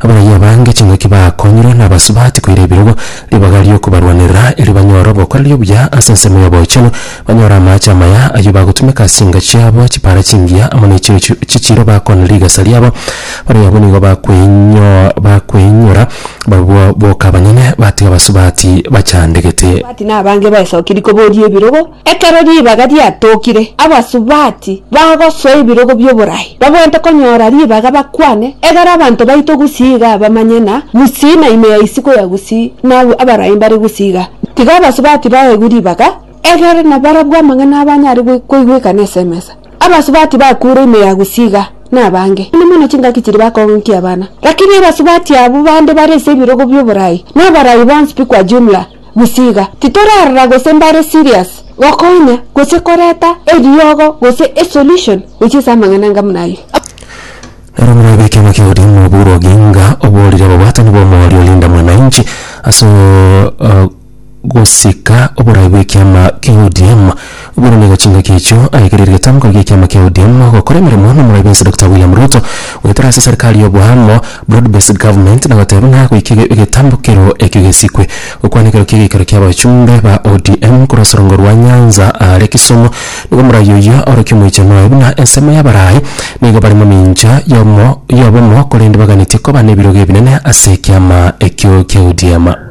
Abaraiyo abange ching'aki baakonyirwe nabasubati koira ebirogo, ribaga ri'okobarwanerera, erio banyore obokoreria obuya ase ensemo y'obochenu, banyore amaache amaya, ayio bagotumeka ase chinka chiabo chipaara chingiya amo ne chirochio chi'echiiro bakoonere rigesa riabo. Abaraiyo abwo nigo bakweinyo bakweinyora barobwo boka abanyene, batiga abasubati bachandegete. Abasubati nabange baesokerie koboria ebirogo, Ekero ribaga riatookire, abasubati bagosoa ebirogo bi'oboraai babwente konyora ribaga bakwane, egera abanto baitwe gusii igaa bamanye na gusii na ime ya isiko ya gusii na abwo abaraai mbare gusii igaa. Tiga abasubati baegwe ribaga, egere nabarabwo amang'ana abanyare koigwekana ase emesa. Abasubati bakure ime ya gusii igaa nabange, mono mono chingaki chiria bakong'unkia abana. Rakini abasubati abwo bande bare ase ebirogo bi'oboraai, na abaraai bonsi pikwa jumla, Gisiga titorarora gose mbare serious gokonya gose koreta eriogo gose esolution gochia ase amang'ana anga buna ayio. Nero omorwai bw'ekiama kia ODM Oburu Oginga oborire ababwatani b'omooria Linda Mwananchi ase gosika oborai bw'ekiama kia ODM. Buna nigo chingaki echio aekereirie getamgo giekiama kia ODM gokora emeremo nomorai bwensi Dokita William Ruto, goetera ase serikali y'oboamo, broad based government, na goteba ng'a goika egetambo kerio ekio gesikwe. Gokwana ekero ki'egeikaro ki'abachumbe ba ODM korwa sorongo rwa Nyanza are Kisumu, nigo morai oyio orokia omoichano oye buna ensemo y'abarai nigo bare momincha y'obomo korende baganetie koba nebirogo ebinene ase ekiama ekio kia ODM.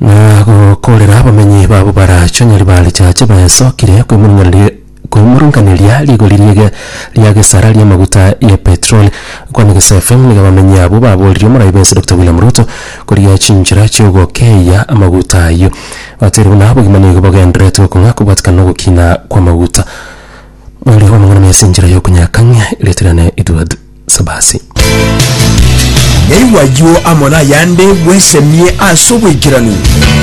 Na gokoorera abamenyi babo bara chionye ribaare chia chiba esokire koimoraneri- koimorankaneria rigori riege ria gesara ri'amaguta ye petroli. Okwana gese FM nigo abamenyi abwo baboorire omoraibe ense Dokita William Ruto korigia chinchera chi'ogokeeia amaguta ayio. Bateire buna obogima nigo bogenderetie okong'a kobwatikana na ogokina kw'amaguta. Nori omong'ina na esinchera y'okonyakang'ia erieta riane Edward Sabasi. Naigwa ayio amo nayande bwesemie ase obwaikeranu.